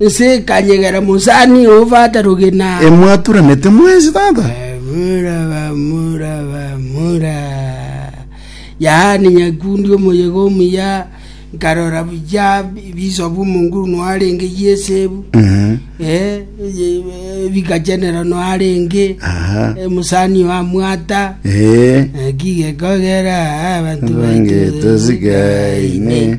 Ense ekanyegera mosani oo Fata Rugina. Emwaturanete mwensi tata. Bamura, bamura, bamura. Yaani Nyakundi omoyega omuya, nkarora buya ebisobu omo nguru noarenge y'esebu, Mhm. eh, ye- eh, bikachenera noarenge, Aha. eh, mosani oo amwata, Eh. eh, kigekogera ah, abanto baito Abange tosikaine. tosikaine.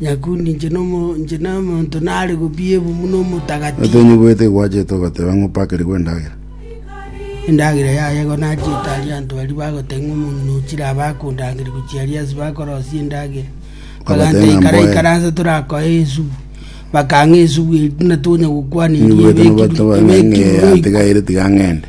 Nyakundi, inche nomonto nare gobiebwa buna omotagatifu. Otonyiboete igwachete ogoteba ng'a opakerigwe endagera. Endagera yaye igo nachete aria anto baria bagoteba ng'a omong'ina oo chirabe akondangeria gochia aria ase bakorosia endagera. Baganta ng'a ikara mboe. ikara nse torakoe esubu. Bakang'a esubu eria buna tonya gokwana eria Nyiboete ebekirwe nobateba ng'a ebekirwe ng'ee roiko. atigaire tiga ng'ende.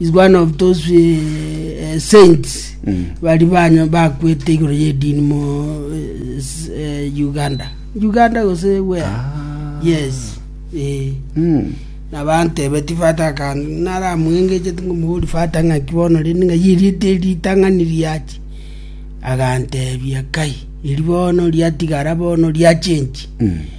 is one of those uh, saints bari banyo bakwete igoro yedini mu uh, s- uh, uganda uganda gose we yes eh. Mm. nabantebe tifata akange naramwengeche tingomogori fata ng'aki bono rende ng'a yeriete eritang'ani riachi agantebia kai eri bono riatigara bono riachenchi Mm.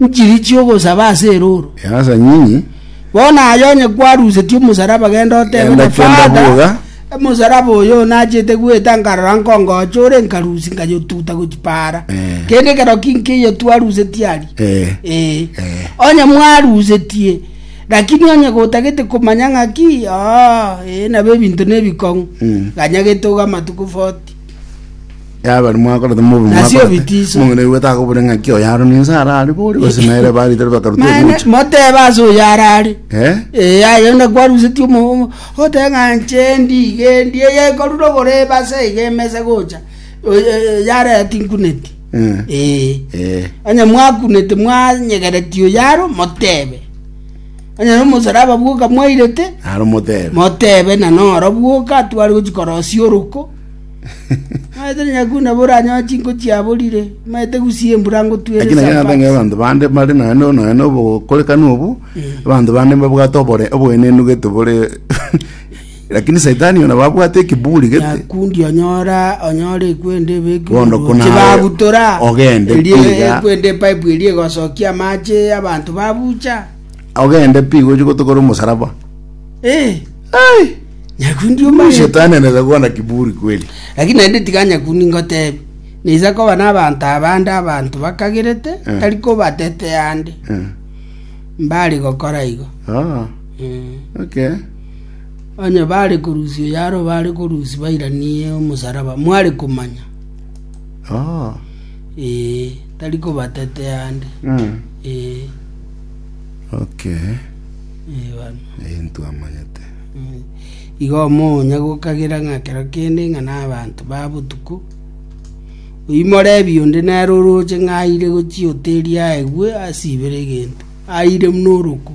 nchiri chi'ogosaba ase erooro. Easa nyinyi. Bono aye onye kwarusetie omosaraba genda otebe Genda, na kenda Father, bwoga. omosaraba oyo onachete goeta nkarora nkongocha ore nkarusi nkayotuta gochi paara. Eh. Kende ekero ki nkeiyo twarusetie aria. Eh. Eh. Eh. Onye mwarusetie lakini onye gotagete komanya ng'aki oo, eh, nabo ebinto nebikong'u. Mm. Ganyagete ogo amatuko 40. yabari mwakorete mobi Nasi mwakorete. obitiso. mong'ina igwete akobore ng'aki oyo aro ninse arare bori gose naere baritari bakaruta Maene, egocha motebe ase oyo arare Eh? Eh, aye na kwarusetie omomo ote ng'a nche ndigendi eye korure oborebe ase iga emesa gocha Oy- eh, yareti nkuneti Eh. Eh. Eh. onye mwakunete mwanyegereti oyo aro motebe onye nomosalaba bwoka mwairete aro motebe motebe na noro bwoka twari gochikorosia oroko Maete nonya koo nabo oranyore chinko chiaborire, maete gusii embura Lakini ngotwere ekero nabengera sabbats. abanto bande bare naye no- naye nobokorekano obo abanto bande mbabwate obore oboenenu gete bore lakini saitani oyo nabo abwate ekiburi gete Nyakundi onyora onyora ekwende ebekire Bono igoro. kuna Chibagutora. ogende Erie kwiga. ekwende epipe erie egosokia amache abanto babucha. ogende pi gochi gotokora omosaraba Eh. Ai, Nyakundi Huyu omaete. shetani anaweza kuwa na kiburi kweli. Lakini naende tiga nyakundi ngotebi. Naisa koba n'abanto abande abanto bakagerete, Eh. tari kobatetea ande. Eh, Mbare gokora igo. ah, Mm. okay. Onye bare korusi oyaro bare korusi bairanie omosaraba mware komanya. Ah, Eh, tari kobatetea ande. mm, Eh. okay. Eh, bana. Eye ntwamanyete. Mm. Igo omoonya gokagera ng'a kero kende ng'a n'abanto ba botuko oimore ebionde nere oroche ng'a aire gochia oteri aegwe asibere egento aire muna oroko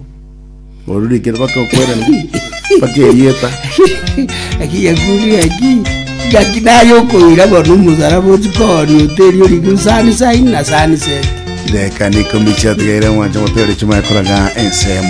Orurikire baka okwera baka erieta. eki yakuri eki gaki naye okoira bono omosaraba ochikooni oteri oriko sani saini na sani seti Reka nikomichia tigaire mwanche motero chimwe koraga ensemo.